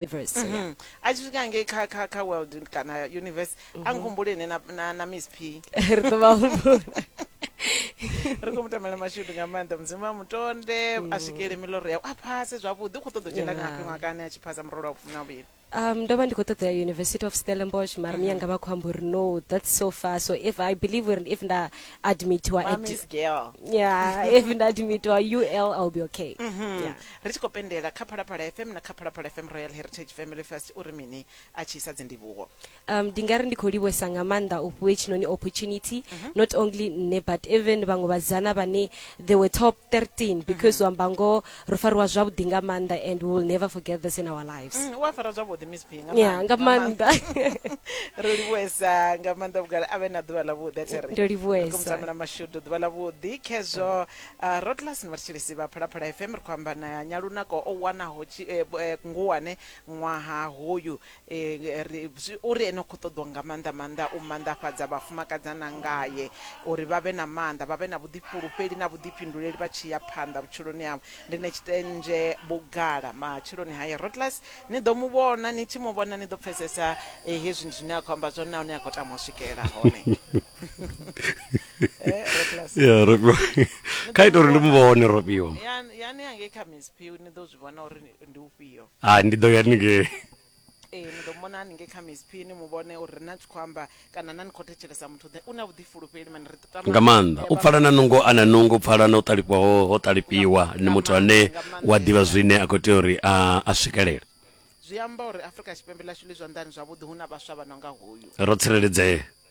universe so yeah. a tshi swika ngei kha kha kha world kana universe a nkhumbule ine na- na na miss p ri ḓo vha humbula ri khou mutamela mashudu nga maanḓa mudzimu a mutonde a swikele miloro yau a phase zwavhuḓi u khou ṱoḓa u dzhena Yeah. ngafhi ṅwakani a tshi phasa murolo wa vhufumi na vhuvhili um ndo vha ndi khou ṱoḓa ya university of stellenbosch mara miyanga vha khou amba uri no that's so far so if i believe uri if nda admitiwa at Mami's girl yeah if nda admitiwa ul i'll be okay yeah. Ri tshi khou pendela kha Phalaphala FM na kha Phalaphala FM Royal Heritage Family Fest uri mini a tshi isa dzindivhuwo. Um, ndi nga ri ndi khou livhuwesa nga maanḓa u fhiwe tshinoni opportunity mhm. not only nṋe but even vhaṅwe vhasidzana vhane they were top 13 mhm. because u amba ngoho ro fariwa zwavhuḓi nga maanḓa and we will never forget this in our lives mm, wa fara zwavhuḓi miss b ya nga maanḓa ro livhuwesa nga maanḓa vhugala a vhe na ḓuvha ḽavhuḓi a thiri ndo livhuwesa mashudu ḓuvha ḽavhuḓi khezwo Rotlas na vhathetshelesi vha Phalaphala FM ri khou amba na Nyalunako o wanaho tshi, eh, eh, Nguwane ṅwaha hoyu eh, ri, zwi, uri ene u khou ṱoḓwa nga maanḓa maanḓa u manḓafhadza vhafumakadzana ngae uri vha vhe na maanḓa, vha vhe na vhuḓifhulufheli na vhuḓifhinduleli vha tshi ya phanḓa vhutshiloni havho. Ndi na tshitendzhe vhugala matshiloni haye. Rotlas ni ḓo mu vhona, ni tshi mu vhona ni ḓo pfesesa eh, hezwi ndi zwine a khou amba zwone nahone a khou tama u swikelela hone. Eh, Roplus. ya robiwa kha ita uri ndi mu vhone robiwa Ya- yani angei kha msp ni ḓo zwi vhona uri ni- ndi ufhio a ndi ḓo ya ningei ee ni ḓo mona haningei kha msp ni mu vhone uri na tshi khou amba kana na ni khou thetshelesa muthu ḓe u na vhuḓifulufheli mani ri tama- nga maanḓa u pfala na nungo a na nungo u pfala na u ṱalifhiwa ho ho ṱalifhiwa ni muthu ane wa ḓivha zwine a khou tea uri a a swikelele zwi amba uri afrika tshipembe ḽashu ḽi zwanḓani zwavhuḓi hu na vhaswa vha no nga hoyu ro tsireledzea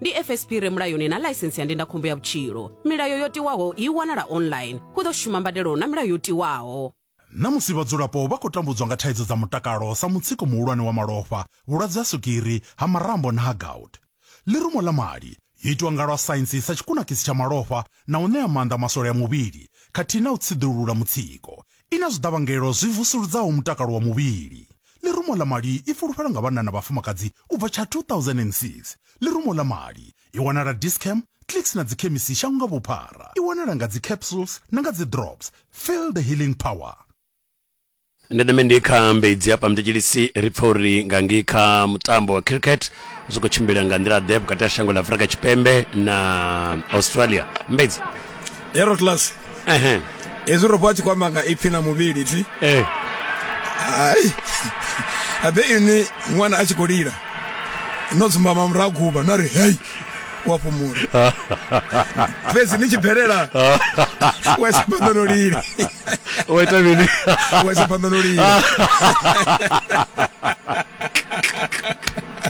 ndi fsp re mulayoni na ḽaisensi ya ndindakhombo ya vhutshilo milayo yo tiwaho i wanala online hu ḓo shuma mbadelo na milayo yo tiwaho Na musi vhadzulapo vha khou tambudzwa nga thaidzo dza mutakalo sa mutsiko muhulwane wa malofha, vhulwadze ha swigiri, ha marambo na ha gout, ḽirumo ḽa mali yo itwa nga lwa saintsi sa tshikunakisi tsha malofha na u ṋea maanḓa maswole a muvhili khathihi na u tsiḓulula mutsiko, I na zwiḓavhangelo zwi vusuludzaho mutakalo wa muvhili. Ḽirumo ḽa mali i fulufhelwa nga vhanna na vhafumakadzi u bva tsha 2006. Ḽirumo ḽa mali i wanala Dis-Chem, Clicks na dzikhemisi shango nga vhuphara. I wanala nga dzi capsules na nga dzi drops. Feel the healing power. Ndeme ndi kha Mbedzi hafha Mtetshilisi ri pfa uri nga ngei kha mutambo wa cricket zwi khou tshimbila nga nḓila ḓe vhukati ha shango ḽa Afrika Tshipembe na Australia. Mbedzi. hero class ehe hezwi ro vha tshi kwamba nga ipfi na muvhili thi eh hai abe ini ṅwana a tshi khou lila no dzumbama murahu guba na ri hei wa fhumula fhedzi ni tshi bvelela wa isa phanḓa no lila o ita mini wa isa phanḓa no lila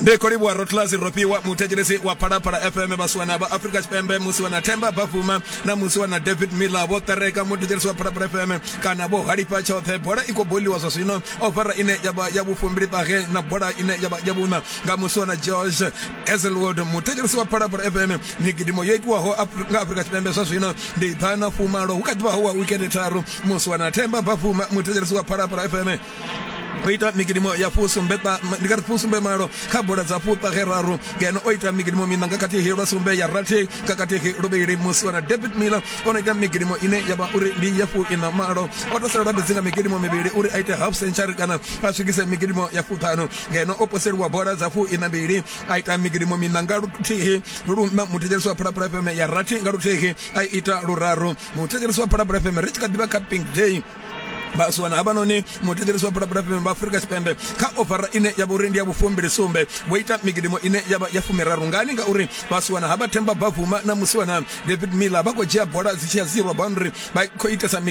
ndi khou livhuwa rotlasi rofhiwa muthetshelesi wa phalaphala fm vhasiwana vha afrika tshipembe musi wana themba bafuma na musi wana david miller vho ṱereka muthetshelesi wa phalaphala fm kana vho halifha tshoṱhe bola i khou boliwa zwa zwino ofara ine yavha ya vhufumbili ṱahe na bola ine yavha ya vhuna nga musi wana george ezelwood muthetshelesi wa phalaphala fm migidimo yo itiwaho nga afrika tshipembe zwa zwino ndi ḓana fumalo hu kha ḓivha ho wa wikende tharu musi wana themba bafuma muthetshelesi wa phalaphala fm o ita migidimo ya fusumbe ndi kati fusumbe malo kha bola dza fhufha khe raru ngeno o ita migidimo mina nga khathihi lwa sumbe ya rathi nga khathihi luvhili musi wana david miller o no ita migidimo ine ya vha uri ndi ya fuina malo o taselelwa fhedzi nga migidimo mivhili uri a ite half century kana a swikise migidimo ya fuṱhanu ngeno o poseliwa bola dza fuina mbili a ita migidimo mina nga luthihi luna muthetshelesi wa phalaphala fm ya rathi nga luthihi a ita luraru muthetshelesi wa phalaphala fm ri tshi kha ḓivha kha pink day vhasiwana havhanoni mutekerisi wa phalaphala fm vha afurika tshipembe kha ofara ine ya vha uri ndi ya vhufumbili sumbe vho ita migidimo ine ya vha ya fumiraru ngani ngauri vhasiwana havha themba bavuma na musiwana david miller vha khou dzhia bola dzi tshi ya zero boundary vha khou itesa migidimo